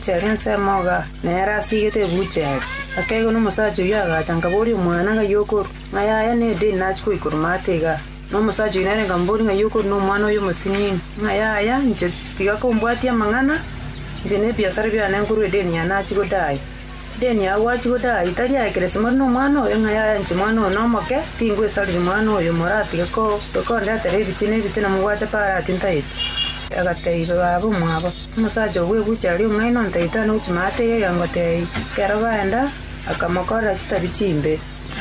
Chiari ensemo iga, na ere asigete ebuucha ere. Akeegwa nomosacha oyio agacha, nkaboria omwana, Ng'ai okorua? Ng'ai aya nedeni nachia goikwa romata iga? Na omosacha oyio nere nkamoboria, Ng'ai okorua nomwana oyo omosinini? Ng'ai aya? Inche tiga kombwatia amang'ana, inche nebiasara biane nkorua edeni eye nachia godaai. Edeni eye gwachia godaai tari aye kera esemore nomwana oyo, ng'ai aya? Inche mwana oyo nomoke, tingwesariri mwana oyo, moratige kondetera ebiti na ebiti na mobwate parati ntaeti. Agatebia baba omwabo, Omosacha oo bw'egucha aria omong'aini ontaitane gochia maate ya egeango tei. Ekero baenda, akamokorera chitabi chimbe.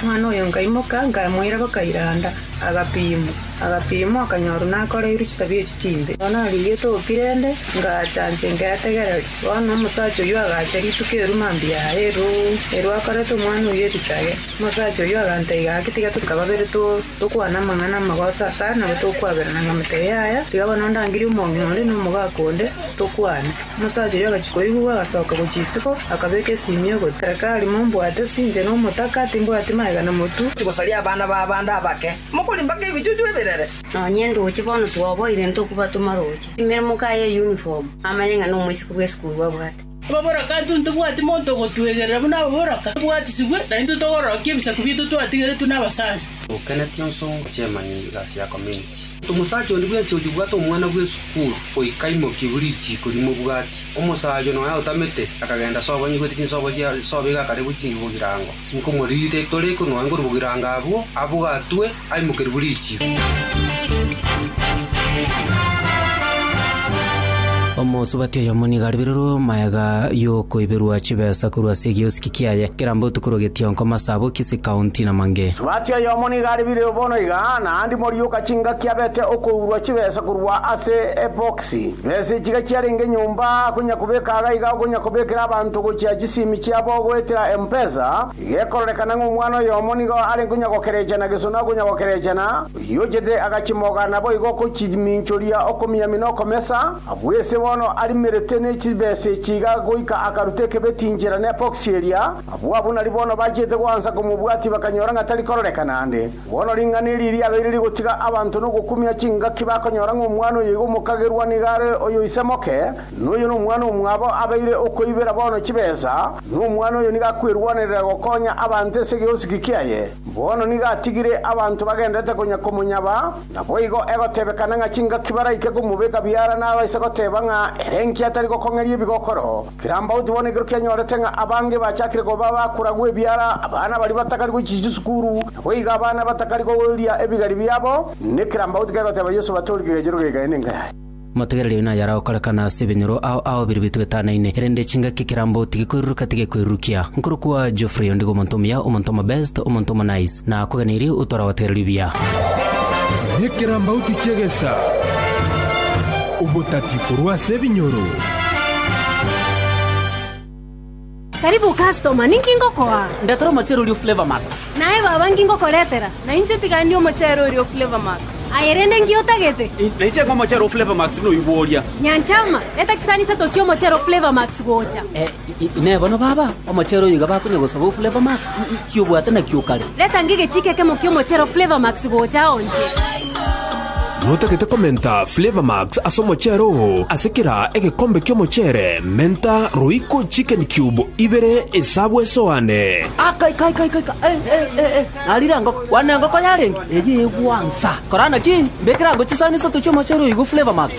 Omwana oyo nkaimoka, nkamoira gokairanda, agapimwa. Agapimwa, akanyorwa nakoreirwe chitabi echio chimbe. Bono arigetwe okirende, ngaacha inche nketegereria. Bono omosacha oyio agacha rituko erwo mambia aa eroo, erwo akorete omwana oyio erichage. Omosacha oyio aganteiga gaki tiga tosike babere too. Tokwana amang'ana amagoso ase aya, nabo togokwaberana ng'a amatebe yaya, tiga bono ndangire omong'ina onde na omogaka onde, tokwane. Omosacha oria agachia koigwa, agasoka gochia isiko, akabeka esimia ogotera. Kari mombwate, sinche nomotaka, timbwati magega na motu. Tigosaria abana b'abande abake, mokorimba nk'ebichuchu ebirere. Nonye ndoche bono twoboire ntokubatoma roche. Imere mokaye uniform, amanye ng'a nomoisiko bw'esukuru abwate. Ababoroke intwe ntobwati monto ogotwegerera buna ababoroke tobwatisibwe, na intwe togororokia ebisaku biaito twatigeretwe nabasacha. Okeneti onso ngochia emanyi igasi ya community. Omosacha onde bwensi oyo obwate omwana bw'esukuru goika imoki buri richiiko rimobwati. Omosacha oyo nonya otamete, akagenda sobo anyigwete chinsobo chia sobo iga akarigwe chingigo girango. Nkomoriire, tore kong'oa ngoru bogirango abwo, abogatwe, aimokerwe bwe richiiko. Omosubati oyomo nigo aribererwe omaega y'okoiberwa chibesa korwa ase egiosiki kiaye, keramba otuko rwa getionko, masabo, kisi, kaunti, na mang'e. Subati oyomo nigo aribererwe bono iga, naende morioka chingaki abete okoiberwa chibesa korwa ase ebox. Ase ense chiga chiarenge nyomba akonya kobeka iga iga okonya kobekera abanto gochia chisimi chiabo goetera empesa, igekororekana ng'a omwana oyomo nigo are nkonya gokerechana gesona okonya gokerechana, oyio ochete agachimoga naboigo okochiminchoria okomiami nokomesa, abwo ese bono arimerete ne chibesa echi iga goika akaruta ekebeti inchera ne poxy eria, abwo abunari bono bachete goansa komobwatia bakanyora ng'a tarikororekana ande. Bono ring'ana eri riabeire rigotiga abanto nogokumia chingaki bakonyora ng'a omwana oyo igo omokagerwa nigo are oyo ise moke, na oyo nomwana omwabo abeire okoibera bono chibesa, na omwana oyo nigo akwerwanerera gokonya abanto ase egeosiki kiaye. Bono nigo atigire abanto bagenderete konya komonyaba, naboigo egotebekana ng'a chingaki baraike komobeka biara nabaise goteba ng'a ere inki atari gokong'eria ebigokoro. Kirambauti bono ekero kianyorete ng'a abange bachakire koba abakoragwa ebiara, abana baria batakari gochia chisukuru, na boigo abana batakari koria ebigari biabo, nekirambauti kegoteba Yeso batoorie kegechero geke, aye nenka yaye. Motegereri oyo naye aragokorekana ase ebinyoro ao ao biria bitoetanaine, erinde chingaki ekirambauti gekoiruruka tigekoirurukia. Nkoro kwa Geoffrey ondigo omonto omuya, omonto omobest, omonto omonice, na akogeneirie otwara gotegereria buya. Nekirambauti ki'egesaa, obotati korwa ase ebinyoro. Karibu customer, ninki ngokoa? Ndetera omochere oria o Flavour Max. Naye baba nki ngokoretera? Na inche tigani omochere oria o Flavour Max. Aye rende nki otagete? Na inche ng'a omochere o Flavour Max buna oywo bworia. Nyanchama, eta chisani isato chia omochere o Flavour Max gocha. Eh, Inee! Bono baba omochere oyo iga bakonya gosaba o Flavour Max? Ki obwate nakio o kare? Retanga egechiiko ekemo ki'omochere o Flavour Max gocha ao inche. Notagete komenta Flavour Max ase omochere oo. Ase kera egekombe ki'omochere, menta roiko chicken cube ibere esabu esoane. Aka ika ika ika ika eh eh eh eh narire engoko kwana engoko yarenge eyio egwansa korana ki mbekere ango chisani isato chi'omochere oyo iga o Flavour Max.